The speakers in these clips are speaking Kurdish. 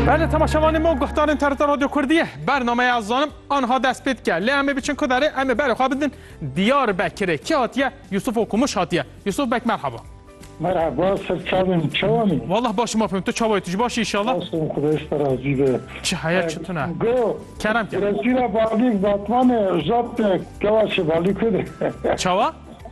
Belê temaşevanê me û guhdarên TRT Radyo Kurdî ye. Bernameya ez zanim anha dest pê dike. Lê em ê biçin ku derê em ê berê xwe bidin Diyarbekirê. Kî hatiye? Yusuf Okumuş hatiye. Yusuf Beg merhaba. Merhaba, ser çavên î, çawan î? Wallah başim apim, tu çawa yî, tu jî baş î înşallah? Spas im Xuda ji te razî be. Çi heye çi tune. Go, Kerem kerem. Gireşîra Balîk Batmanê Ozad Gewaşê Balîk û de. Çawa?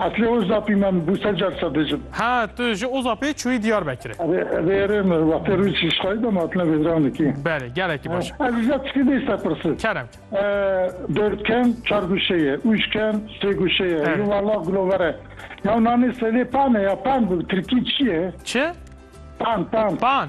Eslê Ozapî men bû sed car sed dijim. Ha tu ji Ozapê çûyî Diyarbekirê. Erê erê min wextê rû çî ji xwayî de ma hatine vêdiranê kî. Belê gelekî baş. Ez ji te tikî dê serpirsê. Kerem kir. Dewr ken çar guşe ye ûj ken sê guşe ye yo walla gulover e. Yaw nanê selê pan e ya pan bi tirkî çi ye? Çi? Pan pan. Pan.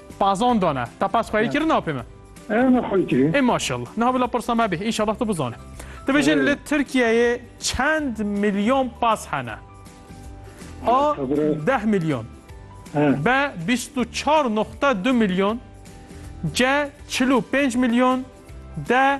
Pazon dane. Te pez xweyî kirin apê me? Ew ne xweyî kirî. Ê maşallah. Niha bila pirsa me bê. Înşallah tu bizanî. Dibêjin li Tirkiyeyê çend milyon paz hene? A. Deh milyon. B. Bîst û çar noqte du milyon. C. Çil û pênc milyon. D.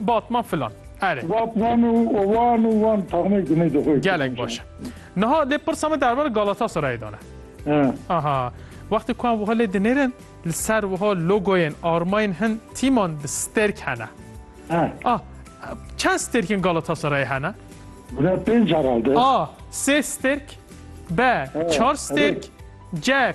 Batman filan. Erê. Batman û wan û wan taxmê gunê de xwe. Gelek baş e. Niha lê pirsa me derbar Galatasarayê dane. Aha. Wextê ku em wiha lê dinêrin li ser wiha logoyên armayên hin tîman bi stêrk hene. Ah çend stêrkên Galatasarayê hene? Gune pênc herhalde. A. Sê stêrk B. Çar stêrk C.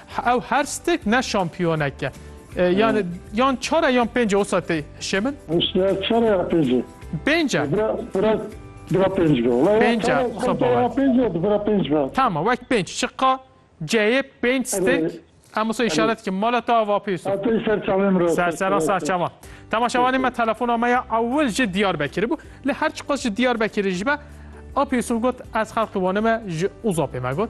Ew her stek ne şampiyonek e. Yani yan çar e yan pênc e osa tê hişê min? Osa çar e ya pênc e? Pênc e. Bira pênc be. Wala ya çar e xempa ya pênc e di bira pênc be. Tamam wek pênc çiqa ceyê pênc stek em osa işaret ki mala ta ava pêso. Atê ser çamê min ra. Ser sera ser çama. Temaşavanê me telefona me ya ewil ji Diyarbekirê bû. Li her çiqas ji Diyarbekirê ji be a pêso got ez xelqê Wanê me ji Uzapê me got.